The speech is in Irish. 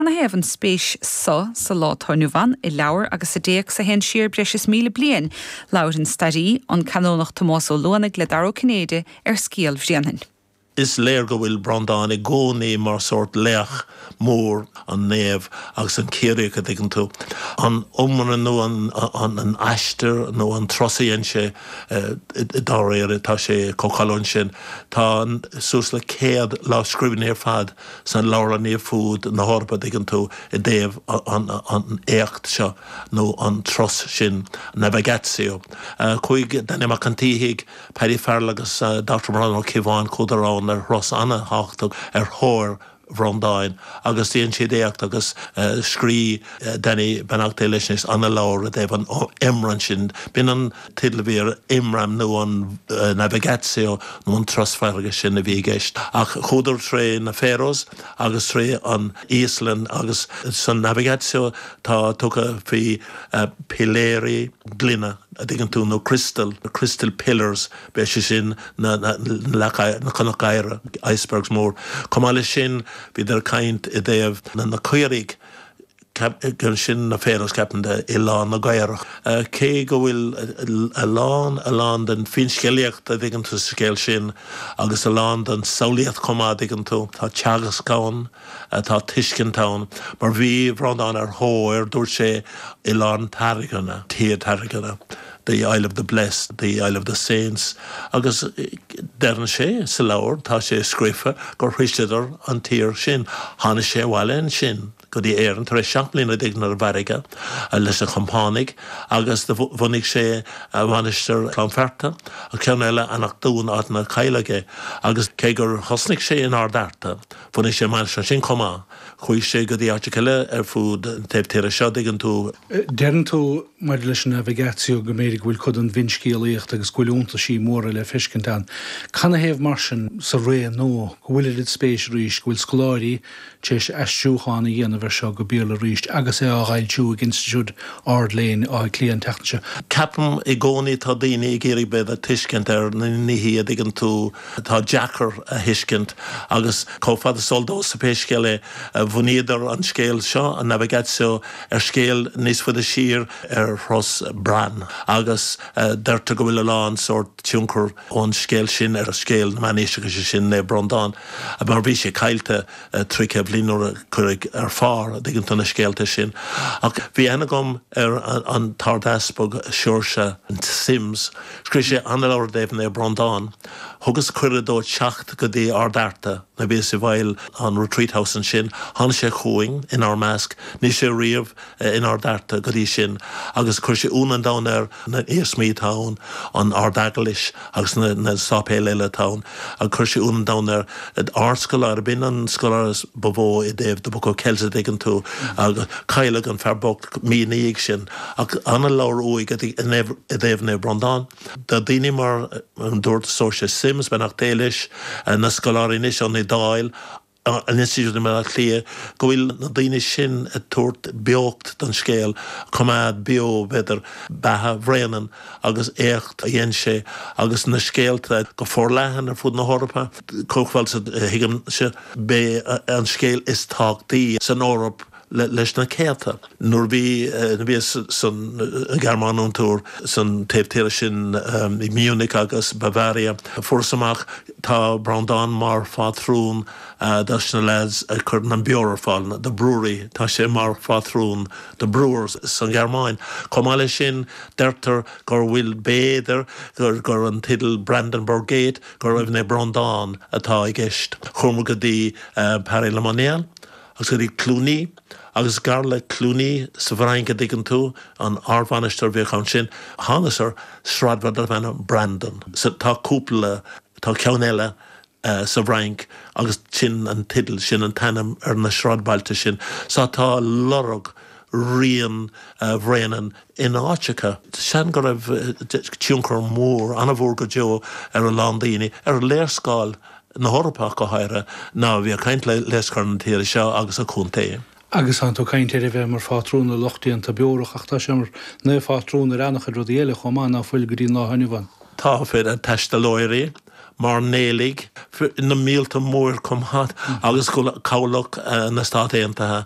Canathaobh an spéis so sa lá atá inniu ann i leabhar agus i dtéacs a théann siar breis is míle bliain? Labhair an stairí, an Canónach Tomás Ó Luanaigh le Dara Ó Cinnéide ar scéal Bhréanainn. Is léir go bhfuil Breandán i gcónaí mar sórt laoch mór, an naomh agus an Ciarraíoch, an dtuigeann tú. An iomramh nó an aistear nó an turas a dhein sé dáiríre, tá sé chomh cáiliúil sin. Tá suas le céad lámhscríbhinn ar fad. sna leabharlanna ar fud na hEorpa, dtuigeann tú, i dtaobh an éacht seo nó an turas sin, navigatio. Chuaigh Danny Mac an tSíthigh, Paddy Ferrell agus Dochtúir Breandán Ó Ciobháin, chuadar amhain ar thuras ana-thábhachtach ar thóir Bhreandáin agus dhéan siad éacht agus scrígh Danny, beannacht Dé leis anois ana-leabhar i dtaobh an iomramh sin. B'in an teideal a bhí air, Iomramh nó an Navigatio nó an turas farraige, sin a bhí i gceist. Ach chuadar tré na Faroes agus tré an Íoslainn agus san Navigatio tá tagairt faoi piléirí gloine, an dtuigeann tú, nó crystal, crystal pillars, is é sin na leaca, na cnocáin oighir, icebergs mór. Chomh maith leis sin bhíodar ag caint i dtaobh na caoirigh, Agus sin na Faroes, ceapaim, oileán na gcaorach. Cé go bhfuil a lán, a lán den finscéalaíocht, a' dtuigeann tú, sa scéal sin, agus a lán den tsamhlaíocht chomh maith, a' dtuigeann tú, tá teagasc ann, tá tuiscint ann. Mar bhí Breandán ar thóir, dúirt sé, Oileán Tairngire, Tír Tairngire, the isle of the blessed, the isle of the saints. Agus deireann sé sa leabhar, tá sé scríofa, gur thaistealaíodar an tír sin. Tháinig sé abhaile ansin. go dtí Éirinn tar éis seacht mbliana déag ar an bhfarraige lena chompánaigh agus do bhunaigh sé Mainistir Cluain Fearta, an ceann eile Eanach Dúin, áit inar cailleadh é. Agus cé gur thosnaigh sé in Ard Fhearta, bhunaigh sé mainistir ansin chomh maith. Chuaigh sé go dtí áiteacha eile ar fud an taobh tíre seo, dtuigeann tú. Deireann tú maidir leis an navigatio go mb'fhéidir go bhfuil cuid den bhfinscéalaíocht agus go bhfuil iontaisí móra le feiscint ann. Canathaobh mar sin sa ré nua go bhfuil oiread spéis arís, go bhfuil scoláirí, Tar éis aistriúchán a dhéanamh air seo go Béarla arís agus é á fhoilsiú ag Institiúid Ard-Léinn Átha Cliath an tseachtain seo. Ceapaim i gcónaí tá daoine ag iarraidh breis tuiscint ar na nithí an dtuigeann tú atá deacair a thuiscint agus chomh fada is eol domhsa pé scéal é, bhunaíodar an scéal seo, an Navigatio, ar scéal níos faide siar ar thuras Bran agus deirtear go bhfuil a lán sórt tionchar ón scéal sin ar scéal na Meánaoise, agus sé sin Naomh Brondán mar bhí sé caillte trí céad bhliain nuair a cuireadh ar phár an dtuigeann tú na scéalta sin ach bhí aithne agam ar an tArdeaspag Seoirse Simms scríobh sé an-leabhar i dtaobh Naomh Brondán thugas cuireadh dó teacht go dtí Ard Fhearta nuair a bhíos i bhfeighil an Retreat House ansin tháinig sé chugainn inár measc ní raibh sé riamh in Ard Fhearta go dtí sin agus chuir sé ionadh an domhain air na hiarsmaí atá ann, an Ard-Eaglais agus na séipéil eile atá ann. Agus chuir sé ionadh an domhain air ardscoláire, b'in an scoláire ba mhó i dtaobh The Book of Kells, a' dtuigeann tú. Agus cailleadh an fear bocht mí ina dhiaidh sin. Ach an-leabhar uaidh i dtaobh Naomh Brondán. Tá daoine mar, dúirt Seoirse Simms, beannacht Dé leis, na scoláirí anois ón Iodáil. an Institiúid i mBaile Átha Cliath go bhfuil na daoine sin ag tabhairt beocht don scéal, coimeád beo, b'fhéidir, beatha Bhréanainn agus éacht a dhein sé agus na scéalta go forleathan ar fud na hEorpa. Chomh fada is a thuigimse, b'é an scéal is tábhachtaí san Eoraip, leis na céadta. Nuair a bhíos san Ghearmáin ó, ar turas san taobh tíre sin i Munich agus Bavaria fuaireas amach tá Breandán mar phátrún do na leaids a chuireann an beoir ar fáil, do breweries, tá sé mar phátrún do brewers san Ghearmáin. Chomh maith leis sin deirtear gur bhfuil b'fhéidir gur an tideal Brandenburg Gate gurb é Naomh Breandán atá i gceist. Chuamar go dtí Paray-le-Monial. Agus go dtí Cluny, agus gar le Cluny sa bhFrainc, an dtuigeann tú, an ardmhainistir a bhíodh ann sin, thánas ar sráidbhaile darbh ainm Brandon. Tá cúpla, tá ceann eile sa bhFrainc agus sin an teideal, sin an t-ainm ar na sráidbhailte sin. Sea, tá lorg rian Bhréanainn in an-áiteacha. Seans go raibh tionchar mór, an-mhór go deo, ar a lán daoine, ar léarscáil. na hEorpa ach go háirithe, ná bí ag caint ar logainmneacha na tíre seo agus a chontae. Agus tánn tú ag caint ar a bheith mar phátrún ar lucht déanta beorach ach tá sé mar naomhphátrún ar an-chuid rudaí eile chomh maith ná fuil go dtí an lá inniu ann? Tá, féach, taistealaithe, mairnéalaigh, na míolta mór chomh maith agus cabhlach na Stát Aontaithe.